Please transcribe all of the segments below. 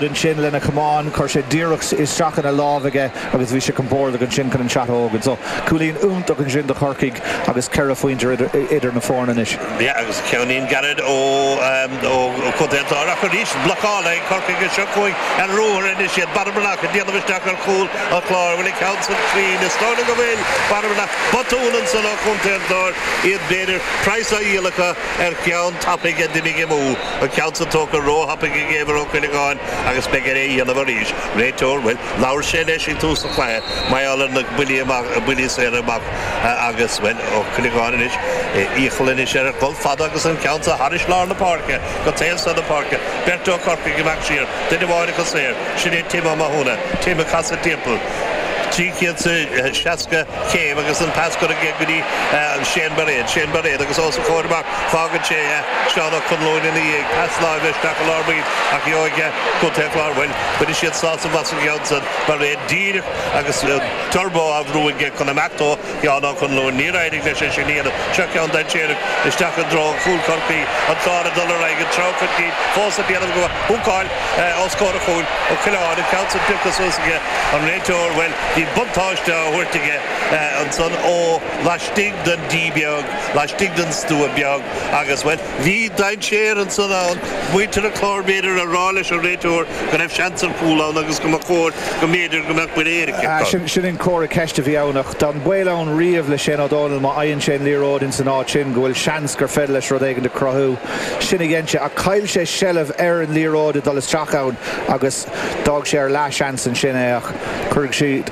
ansin lena chamán, chuir sé díreach isteach ina láimh aige agus bhí sé compórdach ansin chun an shot a thógaint. So, cúilín iontach ansin do Chorcaigh agus ceithre phointe idir na foirne anois. Yeah, agus ceainnín gairid ó Chontae an Chláir ach arís blocáil ag Corcaigh is seo chugainn ar ruathar anois iad. Barry Breathnach ag déanamh isteach ar chúl an Chláir, bhfuil an ceann san cruinn, is dóigh liom go bhfuil. Barry Breathnach, botún ansan ó Chontae an Chláir, iad b'fhéidir, praghas á dhíol acu ar cheann tapaidh a d'imigh amú. An ceann san tógtha róthapaidh ag Éibhear Ó Cuileagáin agus beidh air é a dhéanamh arís. Réiteoir, Bhuel, labhair sé leis ag tús an chluiche, mar gheall ar na buillí amach, buillí saora amach agus, bhuel, Ó Cuileagáin anois, iachall anois air dul fada agus an ceann seo thairis lár na páirce, go taobh seo na páirce. Beirt ó Chorcaigh amach siar, duine amháin acu saor, sin é Tim Ó Mathúna. Tim ag casadh timpeall. Trí chéad seasca céim agus an pas curtha aige go dtí Shane Bairéad. Shane Bairéad agus os a chomhair amach. Fágann sé Seán Ó Conluain ina dhiaidh, pas láimhe isteach i lár baill ach goidte ag Contae an Chláir. Bhuel, bainfidh siad sásamh as an gceann san, mar bhí díreach agus turbó á bhrú aige chun imeacht ó Sheán Ó Conluain. Níor éirigh leis é sin a dhéanamh. Seo ceann dainséarach isteach i dtreo chúl Chorcaí, an Clár ag dul ar aghaidh an treo chun cinn fós ag déanamh go maith. Húcáil os comhair a chúil, Ó Coileáin, an ceann san pioctha suas aige, an réiteoir, bhuel, bhí buntáiste á thabhairt aige ansan ó laistigh den D beag. laistigh den stua beag agus bhuel, bhí dainséar ansan ann muintir an Chláir b'fhéidir a rá leis an réiteoir go raibh seans ar chúl ann agus go mba chóir go mb'fhéidir go mbeadh buille éirice acu. Sin an comhartha ceiste a bhí ann ach tá an baol ann riamh le Shane O'Donnell má fhaigheann sé an liathróid ins an áit sin go bhfuil seans gur féidir leis rud éigin a chruthú. Sin a dhein sé ach chaill sé seilbh ar an liathróid ag dul isteach ann agus d'fhág sé ar leathsheans ansin é ach cuirfidh siad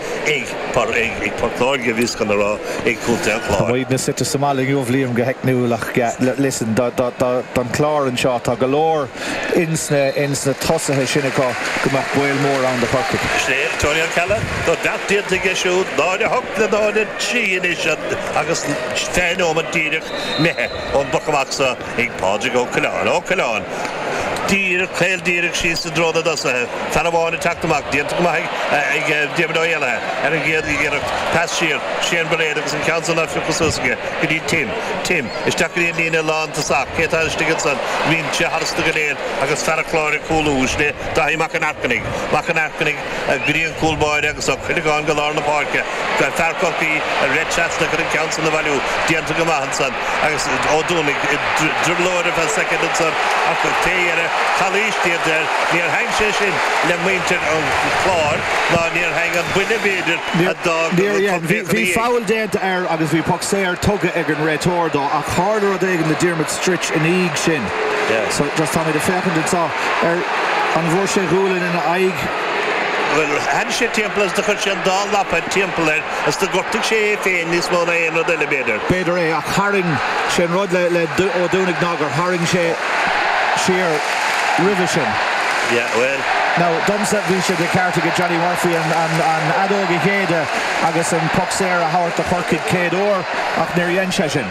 ag par ag ag Port Láirge bhíos chun a rá ag Contae an Chláir. Tá muid na suite sa mbaile inniu, Liam, go theicniúil ach yeah li listen do do do don chlár anseo tá go leor ins na ins na tosaithe sin acu go mbeadh baol mór ann do Chorcaigh. Sea, Tony Ó Ceallaigh, tá beart déanta aige siúd, 0 8 le 0 3 anois agus fiche nóiméad díreach imithe, ón bpoc amach sa, Ag Pádraig Ó Coileáin, Ó Coileáin, díreach, caol díreach síos i dtreo na dtosaithe, fear amháin ag teacht amach, déanta go maith ag Diarmaid Ó hÉalaithe ar an gcéad iarracht, pas siar, Shane Bairéad agus an ceann san á phiocadh suas aige go dtí Tim, Tim, isteach go dtí an líne lántosach, cé atá istigh ansan, imíonn sé tharstu go léir agus fear an Chláir ag cúlú, sin é Dáithí Mac an Airchinnigh, Mac an Airchinnigh, go dtí an cúl báire agus Ó Cuileagáin go lár na páirce, go raibh fear Chorcaí ag rith trasna chun an ceann san a bhailiú déanta go maith ansan agus Ó Duanaigh i dtrioblóid ar feadh soicind ansan ach fé dheireadh calaois déanta air níor thaitin sé sin le muintir an Chláir ná níor thaitin an buille b'fhéidir a d'fhág an rud chomh críochnaithe Bhí feall déanta air agus bhí poc saor tugtha ag an réiteoir dó ach tharla rud éigin do Diarmuid Stritch ina dhiaidh sin. So, just táimid ag féachaint anseo ar an bhfuair sé gualainn ina aghaidh. Bhuel, théann sé timpeall agus do chuir sé an dá lapa timpeall air agus do ghortaigh sé é féin níos mó ná aon rud eile, b'fhéidir. B'fhéidir é, ach tharraing sé an rud le Ó Duanaigh ná gur tharraing sé siar roimhe sin. Yeah, bhuel. Now, domsa bhí sé de cheart ag Johnny Murphy an fheadóg a shéideadh agus an poc saor a thabhairt do Chorcaigh céad uair ach níor dhein sé sin.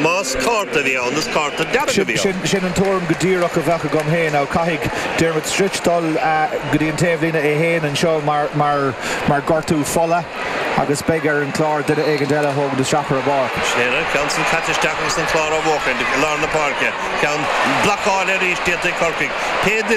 Más cárta a bhí ann, is cárta dearg a bhí ann. Sin an tuairim go díreach a bheadh agam féin, ach caithfidh Diarmuid Stritch dul go dtí an taobhlíne é féin anseo mar gortú fola agus beidh ar an gClár duine éigin eile a thógaint isteach ar a bharr. Sceithire, ceann san caite isteach agus an Clár á bhuachaint i lár na páirce. Ceann blocáilte arís déanta ag Corcaigh. Cé a